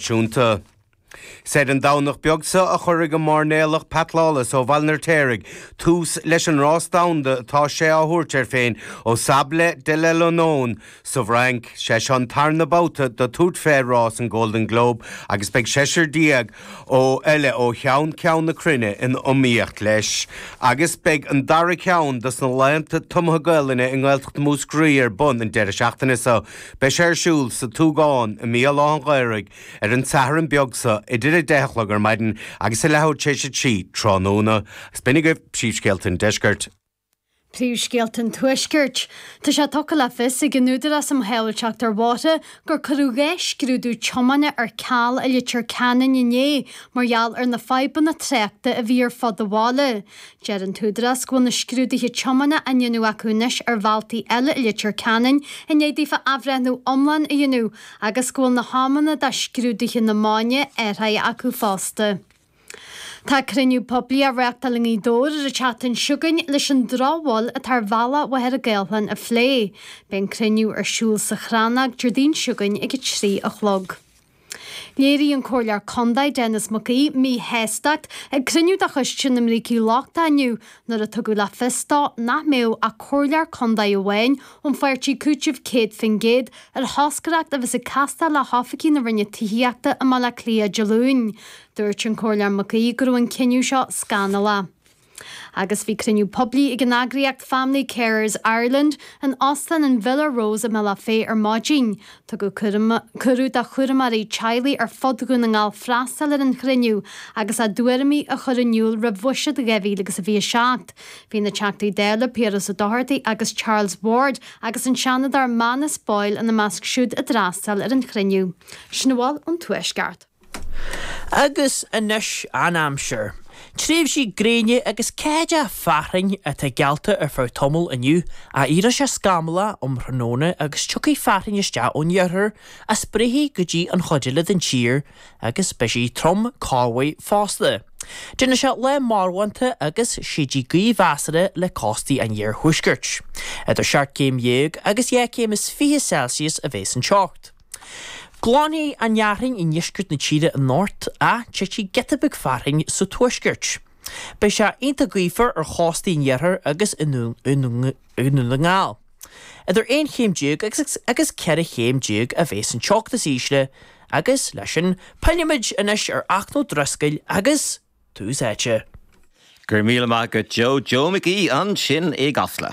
Chunta. Is ar an Domhnach beag seo a chuirfidh an mairnéalach Pat Lawless ó Bhaile an Fheirtéaraigh tús leis an rás domhanda atá sé á thabhairt air féin ó Sables d'Olonne sa bhFrainc. Sé seo an tarna babhta dó tabhairt fé rás an Golden Globe agus beidh seisear déag ó eile ó cheann ceann na cruinne in iomaíocht leis agus beidh an dara ceann dos na laethanta tumtha Gaolainne i nGaeltacht Mhúscraí ar bun an deireadh seachtaine seo. Beidh sé ar siúl sa tSúgán i mBéal Átha an Ghaorthaidh ar an tSatharn beag seo idir a 10 a chlog ar maidin agus a leathuair tar éis a trí tráthnóna. Agus b'in agaibh Príomhscéalta an Deiscirt. Príomhscéalta an Tuaiscirt. Tá sé tugtha le fios ag an Údarás um Shábháilteacht ar Bhóithre gur cuireadh dhá scrúdú tiomána ar ceal i Leitir Ceanainn inné mar gheall ar na fadhbanna tráchta a bhí ar fud an bhaile. Deir an tÚdarás go bhfuil na scrúduithe tiomána á ndéanamh acu anois ar bhealtaí eile i Leitir Ceanainn i ndiaidh daofa athbhreithniú iomlán a dhéanamh agus go bhfuil na hamanna do scrúduithe na maidine athraithe acu fosta. Tá cruinniú poiblí á reachtáil i nGaoth Dobhair ar an tseachtain seo chugainn leis an drochbhail atá ar bhealach Mhachaire Gathlán a phlé. Beidh an cruinniú ar siúl sa Chrannóg Déardaoin seo chugainn ag a trí a chlog. Léirigh an Comhairleoir Condae Denis Mac Aoidh míshástacht ag cruinniú de choiste na mbrící lochta inniu nuair a tugadh le fios dó nach mbeadh ach Comhairleoir Condae amháin ón pháirtí Cúiteamh 100% ar thoscaireacht a bheas ag castáil le hoifigigh na Roinne Tithíochta i mBaile Átha Cliath Dé Luain. Dúirt an Comhairleoir Mac Aoidh go raibh an cinneadh seo scannalach. Agus bhí cruinniú poiblí ag an eagraíocht Family Carers Ireland in Óstán an Villa Rose i mBealach Féich ar maidin. Tugadh cuireadh do chúramóirí teaghlaigh ar fud Dhún na nGall freastal ar an chruinniú agus a dtuairimí a chur in iúl roimh bhuiséad 2027. Bhí na Teachtaí Dála Piaras Ó Dochartaigh agus Charles Ward agus an Seanadóir Manus Boyle ina measc siúd a d'fhreastail ar an chruinniú. Sin a bhfuil ón Tuaisceart. Agus anois an aimsir. Tréimhsí gréine agus ceathaideacha fearthainn atá geallta ar feadh tamaill inniu, ach éireoidh sé scamallach um thráthnóna agus tiocfaidh fearthainn isteach ón iarthar a spréifidh go dtí an chuid eile den tír agus beidh sí trom cuid mhaith fosta. Déanfaidh sé lá marbhánta agus séidfidh gaoth mheasartha le cóstaí an iarthuaiscirt. Idir seacht gcéim dhéag agus dhá chéim is fiche Celsius a bheas an teocht. Glanfaidh an fhearthainn i ndeisceart na tíre anocht ach titfidh giota beag fearthainn sa tuaisceart. Beidh sé iontach gaofar ar chóstaí an iarthair agus i nDún na nGall. Idir aon chéim déag agus ceithre chéim déag a bheas an teocht is ísle agus, leis sin, pillfimid anois ar Fhachtna Ó Drisceoil agus Tús Áite. Go raibh míle maith agat Joe Joe McGee ansin i gCasla.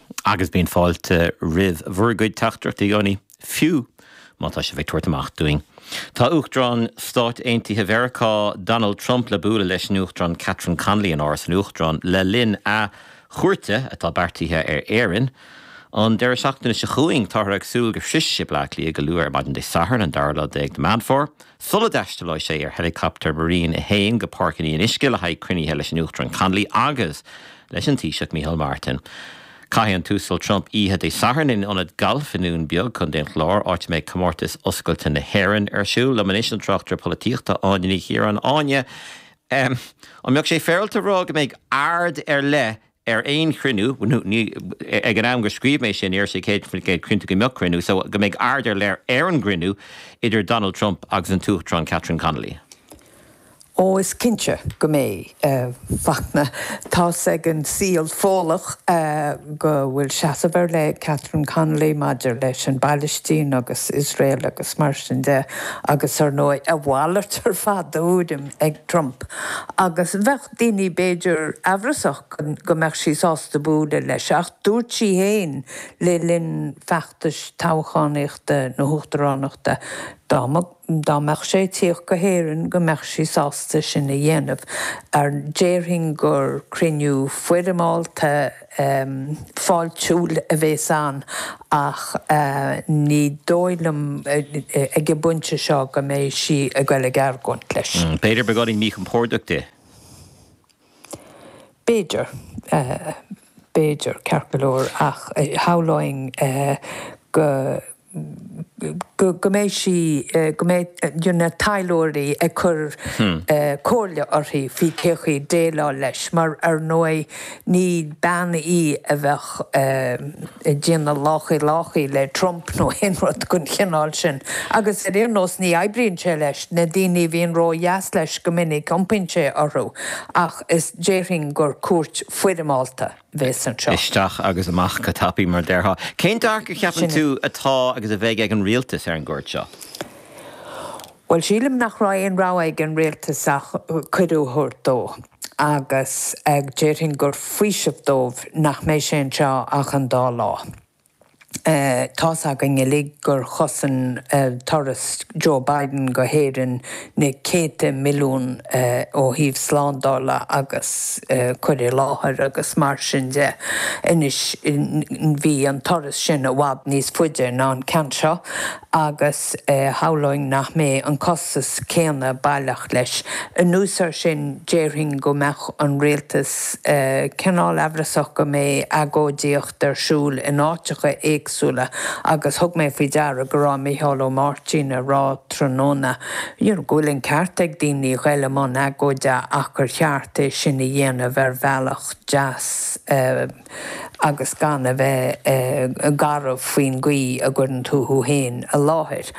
Agus bíonn fáilte roimh bhur gcuid teachtaireachtaí i gcónaí, fiú má tá sibh ag tabhairt amach dúinn. Tá Uachtarán Stáit Aontaithe Mheiriceá Donald Trump le bualadh leis an Uachtarán Catherine Connolly in Áras an Uachtaráin le linn a chuairte atá beartaithe ar Éirinn an deireadh seachtaine seo chugainn. Táthar ag súil go shroichfidh sé Bleá Cliath go luath ar maidin Dé Sathairn, an dara lá déag de Meán Fómhair. Sula dtaistealóidh sé ar heilicaptar Marine a hAon go Páirc an Fhionnuisce le haghaidh cruinnithe leis an Uachtarán Connolly agus leis an Taoiseach Micheál Martin. Caithfidh an tUasal Trump oíche Dé Sathairn in ionad gailf i nDún Beag, Co. an Chláir, áit a mbeidh Comórtas Oscailte na hÉireann ar siúl. Liom anois an tráchtaire polaitíochta, Áine Ní Chiaráin. Áine, An mbeadh sé féaráilte a rá go mbeidh aird ar leith ar aon chruinniú, nó ní, ag an am gur scríobh mé sin, ní raibh sé céad faoin gcéad cinnte go mbeadh cruinniú, so, go mbeidh aird ar leith ar an gcruinniú idir Donald Trump agus an tUachtarán Catherine Connolly. Ó, is cinnte go mbeidh, a Fhachtna. Tá's ag an saol Fódhlach go bhfuil seasamh ar leith ag Catherine Connolly maidir leis an bPailistín agus Iosrael agus mar sin de, agus ar ndóigh, a mhalairt ar fad de thuairim ag Trump, agus bheadh, daoine b'fhéidir amhrasach go mbeadh sí sásta bualadh leis, ach dúirt sí féin le linn feachtais toghchánaíochta na hUachtaránachta dá mbeadh sé ag tíocht go hÉirinn go mbeadh sí sásta sin a dhéanamh. Déarfainn gur cruinniú foirmeálta. fáiltiúil a bhéas ann ach ní dóigh liom ag an bpointe seo go mbeidh sí ag dul ag argóint leis. B'fhéidir beidh sé roinnt míchompordach di. B'fhéidir. B'fhéidir, ceart go leor, ach shamhlóinn go mbeidh sí, go mbeidh na taidhleoirí ag cur comhairle uirthi faoi cén chaoi déileáil leis, mar ar ndóigh ní bean í a bheadh ag déanamh láchaí láchaí le Trump nó aon rud den chineál sin. Agus ar aon nós ní oibríonn sé leis, na daoine a bhíonn ró-dheas leis go minic iompaíonn sé orthu, ach is déarfainn gur cuairt foirmeálta. bheas ann. Isteach agus amach go tapaidh, mar a déarfá. Cén dearcadh, cheapann tú, atá agus a bheidh ag an rialtas ar an gcuairt seo? Bhuel, sílim nach raibh aon rogha ag an rialtas ach cuireadh a thabhairt dó, agus déarfainn gur faoiseamh dóibh nach mbeidh sé anseo ach an dá lá. Tá's againn uilig gur chosain turas Joe Biden go hÉirinn na céadta milliún ó thaobh slándála agus cur i láthair agus mar sin de. Anois bhí an turas sin i bhfad níos faide ná an ceann seo agus shamhlóinn nach mbeidh an costas céanna baileach leis. Anuas air sin déarfainn go mbeadh an rialtas cineál amhrasach go mbeidh agóidíocht, Bhí ar siúl in áiteacha éagsúla agus thug mé faoi deara go raibh Micheál Ó Máirtín ag rá tráthnóna go bhfuil an ceart ag daoine a ghoil i mbun agóide ach gur cheart é sin a dhéanamh ar bhealach deas agus gan a bheith garbh faoin gcaoi a gcuireann tú thú féin i láthair.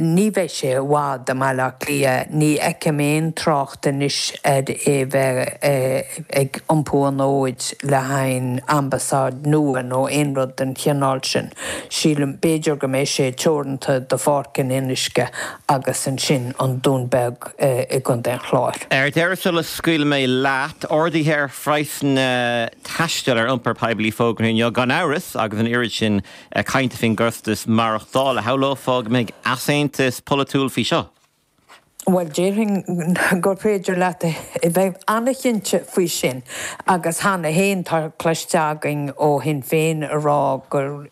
Ní bheidh sé i bhfad i mBaile Átha Cliath, ní fheicim aon trácht anois ar é bheith ag iompú an fhóid le haghaidh ambasáid nua nó aon rud den chineál sin. Sílim, b'fhéidir go mbeidh sé teoranta do Pháirc an Fhionnuisce agus ansin an Dún Beag i gContae an Chláir. Ar deireadh, sula scaoilfidh mé leat, ardaithe ar phraghsanna taistil ar iompar poiblí fógartha inniu, agus gan amhras, agus an oiread sin, cainte faoin gcostas maireachtála, shamhlófá go mbeidh easaontas polaitiúil faoi seo. Bhuel, déarfainn gur féidir leat a bheith an-chinnte faoi sin, agus cheana féin tá cloiste againn ó Shinn Féin a rá gur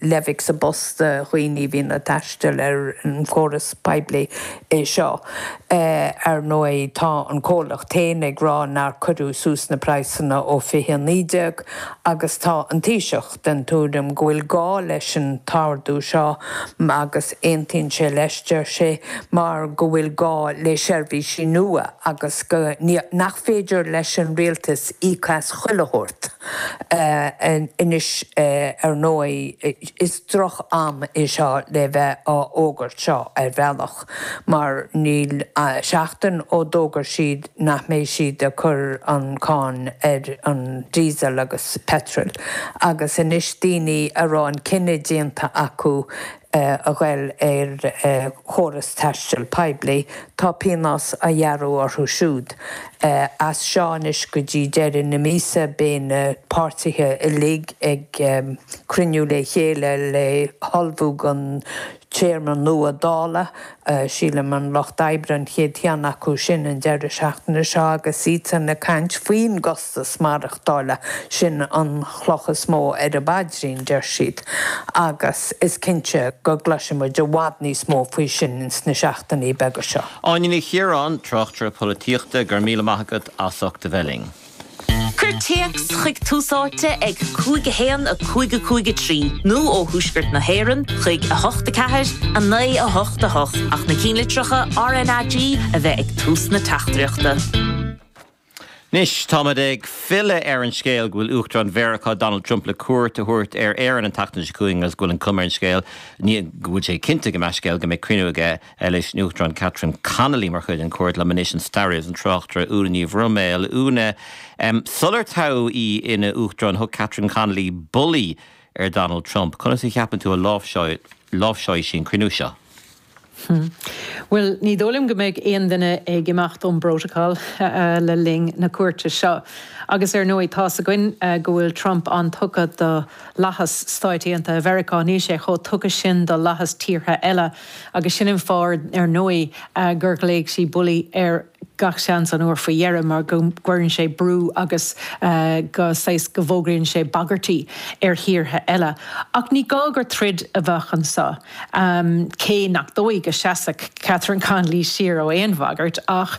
leidhce sa bpus do dhaoine a bhíonn ag taisteal ar an chóras poiblí é seo. Ar ndóigh, tá an comhlacht féin ag rá nár cuireadh suas na praghsanna ó 2019, agus tá an Taoiseach, den tuairim go bhfuil gá leis an ardú seo agus aontaíonn sé leis, deir sé, mar go bhfuil gá le seirbhísí nua agus go, nach féidir leis an rialtas íoc as chuile shórt. Anois ar ndóigh is droch am é seo le bheith á fhógairt seo ar bhealach. mar níl ach seachtain ó d'fhógair siad nach mbeidh siad ag cur an cháin ar an diesel agus petrol agus anois daoine a raibh an cinneadh déanta acu a ghoil ar chóras taistil poiblí, tá pionós á ghearradh orthu siúd. As seo anois go dtí deireadh na míosa beidh na páirtithe uilig ag cruinniú le chéile le hullmhú don Téarma nua Dála, sílim, an Lucht Oibre an chéad cheann acu sin an deireadh seachtaine seo agus iadsan ag caint faoin gcostas maireachtála, sin an chloch is mó ar a bpaidrín, deir siad, agus is cinnte go gcloisfidh muid i bhfad níos mó faoi sin ins na seachtainí beaga seo. Áine Ní Chiaráin, Tráchtaire Polaitíochta, go raibh míle maith agat as ucht a bheith linn. Cuir téacs chuig Tús Áite ag 5 1 5 5 3 nó ó Thuaisceart na hÉireann chuig 8 4 9 8 8 ach na cinnlitreacha RNAG a bheith ag tús na teachtaireachta. Anois táimid ag filleadh ar an scéal go bhfuil Uachtarán Mheiriceá Donald Trump le cuairt a thabhairt ar Éirinn an tseachtain seo chugainn agus go bhfuil an chuma ar an scéal, ní go bhfuil sé cinnte i gcomhair scéal, go mbeidh cruinniú aige leis an Uachtarán Catherine Connolly mar chuid den chuairt. Liom anois an staraí agus an tráchtaire Úna Ní Bhroiméil. Úna, sular toghadh í ina huachtarán thug Catherine Connolly bulaí ar Donald Trump. Conas a cheapann tú a láimhseáilfidh sí an cruinniú seo? Bhuel ní dóigh liom go mbeidh aon duine ag imeacht ón bprotocol le linn na cuairte seo. Agus ar ndóigh tá's againn go bhfuil Trump an-tugtha do fhlaitheas Stáit Aontaithe Mheiriceá níl sé chomh tugtha sin do fhlaitheas tíortha eile Agus sin an fáth, ar ndóigh, gur ghlaoigh sí Bully air, gach seans, an uair faoi dheireadh, mar go gcuireann sé brú agus go, saghas, go bhfógraíonn sé bagairtí ar thíortha eile. Ach ní gá gur troid a bheadh anseo, cé nach dóigh go seasfadh Catherine Connolly siar ó aon bhagairt, ach.